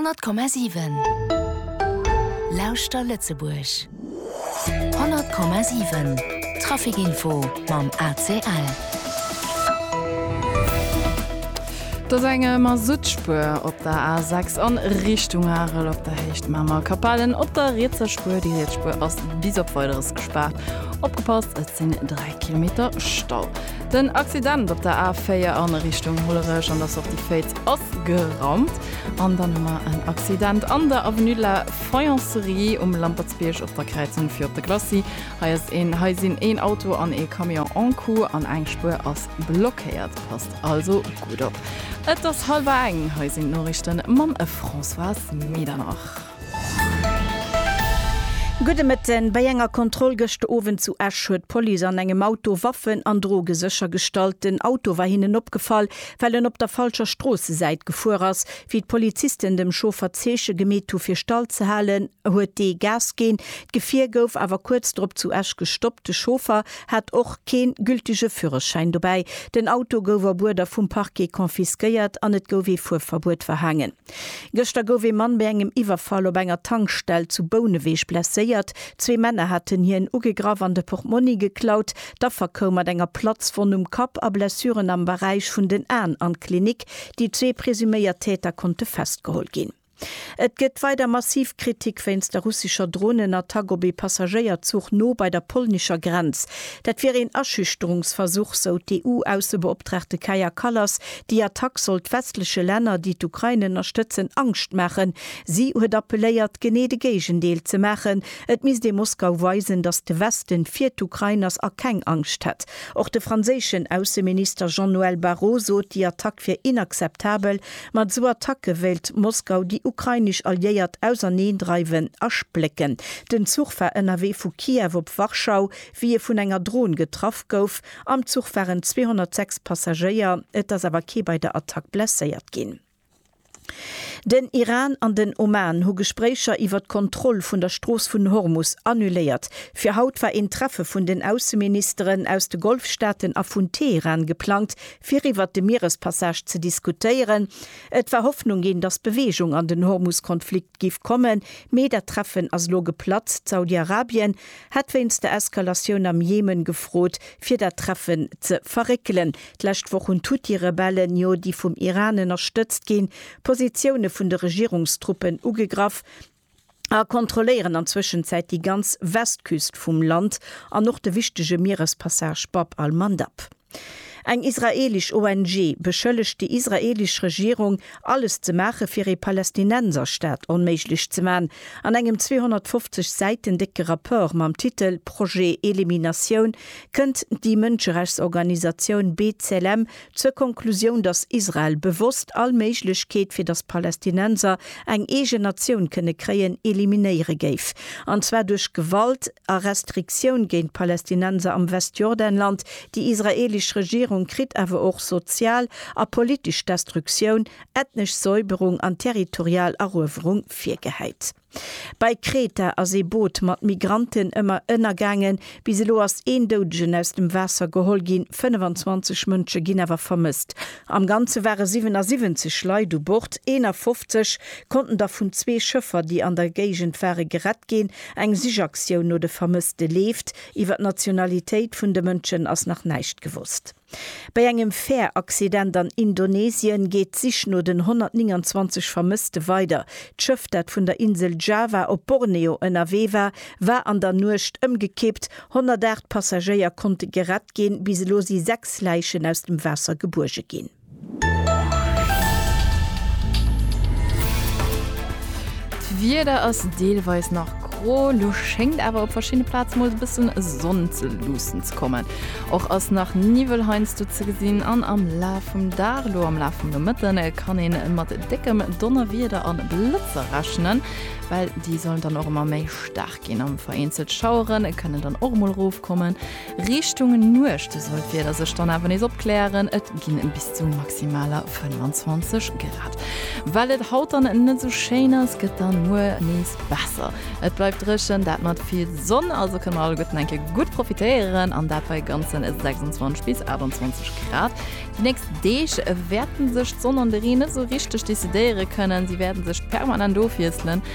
100,7 Lauschter Lëtzebuerg 100,7 Trafic Info mam ACL. Et ass eng Masuttspuer op der A6 a Richtung Arel op der Héicht Mamer. Capellen op der rietser Spuer. Déi riets Spuer ass bis op Weideres gespaart. Opgepasst, et sinn 3 Kilometer Stau. Den Accident op der A4 an Richtung Hollerech an der Sortie Féitz ass geraumt. An dann hu mer en Accident an der Avenue de la Faïencerie um Lampertsbierg op der Kräizung fir op de Glacis. Hei ass een, hei sinn een Auto an ee Camion en coup an eng Spuer ass blockéiert. Passt also gutt op. Et ass hallwer eng, hei sinn d'Noriichte mam Françoise Medernach. Gudde Mëtten, Bei enger Kontroll gëscht Owend zu Esch huet d'Police an engem Auto Waffen an Droge séchergestallt. Den Auto war hinnen opgefall, well en op der falscher Stroossesäit gefuer ass. Wéi d'Polizisten dem Chauffer Zeeche gemeet hu fir stall ze halen, huet dee Gas ginn. D'Gefier gouf awer kuerz drop zu Esch gestoppt. De Chauffer hat och keen gültege Führerschäin dobäi. Den Auto gouf a Buerder vum Parquet confisquéiert an et gouf ee Fuerverbuet verhaangen. Gëschter gouf ee Mann bei engem Iwwerfall op enger Tankstell zu Bouneweg blesséiert. Zwee Männer haten hien ugegraff an de Portmonni geklaut. D'Affer koum mat enger Platzwonn um Kapp a Blessuren am Beräich vun den Aen an d'Klinik. Déi zwee presuméiert Täter konnte festgeholl ginn. Et gëtt weider massiv Kritik wéinst der russescher Dronenattack op ee Passagéierzuch no bei der polnescher Grenz. Dat wier een Aschüchterungsversuch, sou d'EU-Aussebeoptraagte Kaja Kallas Déi Attack sollt westleche Länner, déi d'Ukrain ënnerstëtzen, Angscht maachen. Si huet appelléiert, genee de Géigendeel ze maachen. Et misst ee Moskau weisen, datt de Westen fir d'Ukrain ass a keng Angscht hätt. Och de franséischen Ausseminister Jean-Noël Barrot sot, déi Attack wier inakzeptabel. Mat esou Attacke wéilt Moskau déi ukrainesch Alliéiert auserneendreiwen a splécken. Den Zuch war ënnerwee vu Kiew op Warschau, wéi e vun enger Dron getraff gouf. Am Zuch waren 206 Passagéier, et ass awer kee bei der Attack blesséiert ginn. Den Iran an den Oman hu Gespréicher iwwer d'Kontroll vun der Strooss vun Hormus annuléiert. Fir haut war een Treffe vun den Ausseministeren aus de Golfstaaten a vun Teheran geplangt, fir iwwer de Mierespassage ze diskutéieren. Et war Hoffnung ginn, datt Beweegung an den Hormus-Konflikt giff kommen, mee dat Treffen ass elo geplatzt. Saudi-Arabien hat wéinst der Eskalatioun am Jemen gefrot, fir dat Treffen ze verréckelen. D'lescht Woch hunn d'Huthi-Rebellen jo déi vum Iran ënnerstëtzt ginn Positioune vun de Regierungstruppen ugegraff a kontrolléieren an Zwëschenzäit déi ganz Westküst vum Land an och de wichtege Mierespassage Bab al-Mandab. Eng israeelesch ONG beschëllegt déi israeelesch Regierung, alles ze maache fir ee Palästinenserstaat onméiglech ze man. An engem 250 Säiten décke Rapport mam Titel Projet Eliminatioun kënnt déi Mënscherechtsorganisatioun B'Tselem zur Konklusioun, datt Israel bewosst all Méiglechkeet fir datt Palästinenser eng eegen Natioun kënne kréien, eliminéiere géif. An zwar duerch Gewalt a Restriktioun géint d'Palästinenser am Westjordanland, Déi israeelesch Regierung kritt awer och sozial a politesch Destruktioun, ethnesch Säuberung an territorial Eruewerung virgehäit. Bei Kreta ass ee Boot mat Migranten ëmmer ënnergaangen. Bis elo ass een Doudegen aus dem Waasser geholl ginn, 25 Mënsche ginn awer vermësst. Am Ganze ware 77 Leit u Bord, 51 konnten der vun zwee Schëffer, déi an der Géigend ware, gerett ginn. Eng Sichaktioun no de Vermësste leeft. Iwwer d'Nationalitéit vun de Mënschen ass nach näischt gewosst. Bei engem Fäeraccident an Indonesien geet d'Sich no den 129 Vermësste weider. D'Schëff, dat vun der Insel Java op Borneo ënnerwee war, war an der Nuecht ëmgekippt. 108 Passagéier konnte gerett ginn. Bis elo si sechs Läichen aus dem Waasser gebuerge ginn. D'Wieder ass deelweis nach gro, lo schéngt awer op verschiddene Plaze mol e bëssen Sonn ze luussen ze kommen. Och ass nach Niwwel heiansdo ze gesinn an am Laf vum Dag, lo am Laf vum Nomëtte kann ee mat déckem Donnerwieder a Blëtzer rechnen, well déi sollen dann och ëmmer méi staark ginn a vereenzelt Schauere kënnen dann och mol erofkommen. Richtung Nuecht soll d'Wieder sech dann awer nees opklären, et ginn bis zu maximaler 25 Grad. Well et haut dann net sou schéin ass, gëtt dann muer nees besser. Et bleift dréchen, dat mat vill Sonn, also kënne mer alleguerten eng Kéier gutt profitéieren an dat bei ganzen 26 bis 28 Grad. Déi nächst Deeg wäerte sech d'Sonn an de Reen net sou richteg decidéiere kënnen, si wäerte sech permanent ofwiesselen.